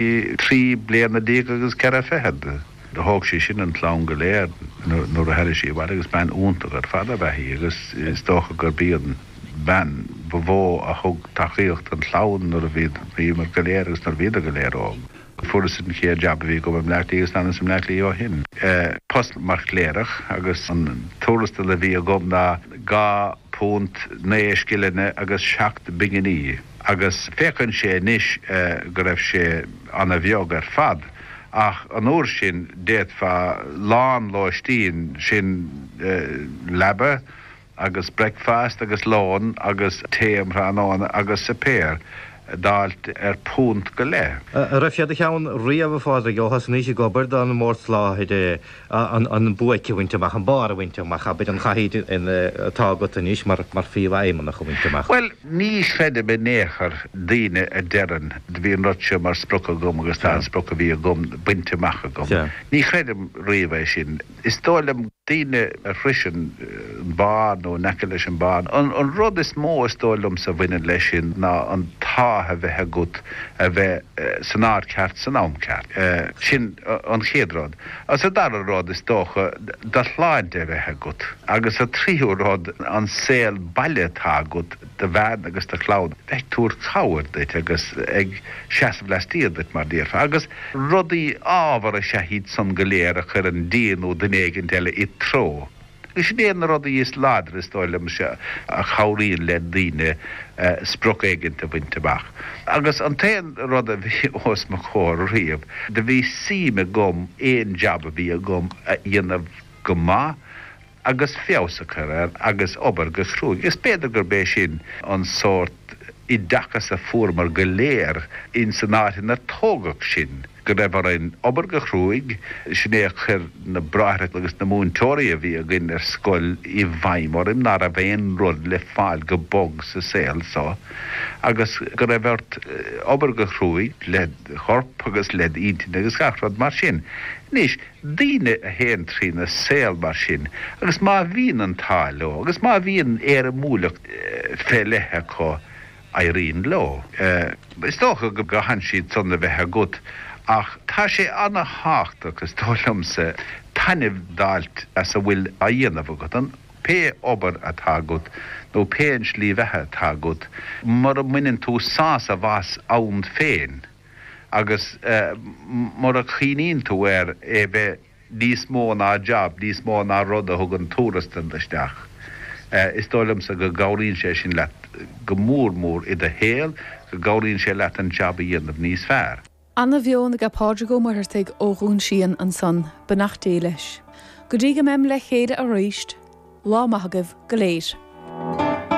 Trí bliana déag agus ceithre fichead a thóg sé sin an chlann go léir nuair a tháinig sé abhaile agus bean iontach ar fad ab ea í agus is dócha gurb í an bhean ba mhó a thug tacaíocht don chlann nuair a bhíomar go léir agus nuair a bhíodar go léir óg. Fuaireas an chéad jab a bhí agam i mBleá Cliath agus leanas i mBleá Cliath ó shin, post mar chléireach agus an tuarastal a bhí agam ná dhá phunt naoi scileanna agus seacht bpinginí. agus féachann sé anois go raibh sé ana bheag ar fad, ach an uair sin d'fhéadfá lán lóistín, sin leaba agus breicfeast agus lón agus tae um thráthnóna agus suipéar, d'fháilt ar phunt go leith. An raibh sé id cheann riamh, a Phádraig, ó thosnaís ag obair don mBord Soláthair? an buaic a bhaint amach, an barr a bhaint amach, abair, an chathaoir atá agat anois mar phríomhfheidhmeannach a bhaint amach. Bhuel, ní chreidim in aon chor daoine a deireann, bhí an rud seo mar sprioc agam agus tá an sprioc a bhí agam bainte amach agam. Ní chreidim riamh é sin. Is dóigh liom daoine a shroiseann an barr nó in aice leis an barr, an rud is mó is dóigh liomsa a bhaineann leis sin ná an t-ádh a bheith agat a bheith san áit ceart san am ceart. Sin an chéad rud. Is an dara rud, is dócha, do shláinte a bheith agat, agus an tríú rud, an saol baile atá agat do bhean agus do chlann, bheith ag tabhairt cabhair duit agus ag seasamh laistiar duit, mar a déarfá, agus rudaí ámharacha is ea iad san go léir a chuireann Dia nó duine éigin eile id threo. Sin iad na rudaí is láidre, is dóigh liom, a chabhraíonn le daoine sprioc éigin a bhaint amach. Agus an t-aon rud a bhí os mo chomhair riamh, do bhí suim agam aon jab a bhí agam a dhéanamh go maith agus feabhas a chur air agus obair go cruaidh. Is b'fhéidir gurb é sin an sórt oideachas a fuaireamar go léir ins an áit inar tógadh sinn. go raibh orainn obair go cruaidh, sin é a chuir na bráithre agus na múinteoirí a bhí againn ar scoil i bhfeidhm orainn, ná raibh aon rud le fáil go bog sa saol so, agus go raibh ort obair go cruaidh led chorp agus led intinn agus gach rud mar sin. Anois, daoine a théann trína saol mar sin, agus má bhíonn an t-ádh leo, agus má bhíonn éirimiúlacht fé leith acu, éiríonn leo. Is dócha go gcaitheann tú iad san a bheith agat ach tá sé ana-thábhachtach, is dóigh liomsa, taitneamh d'fháilt as a bhfuil á dhéanamh agat, an, pé obair atá agat nó pé an slí bheatha atá agat, mura mbaineann tú sásamh as an féin agus mura gcoinníonn tú air é bheith. níos mó ná jab, níos mó ná rud a thugann tuarastal isteach. Is dóigh liomsa go gcabhraíonn sé sin leat go mór mór i do shaol, go gcabhraíonn sé leat an jab a dhéanamh níos fearr. Ana mheon ag Pádraig Ó Muircheartaigh ó Dhún Síon ansan, beannacht Dé leis. Go dtí go mbeim le chéile aríst, lá maith agaibh go léir.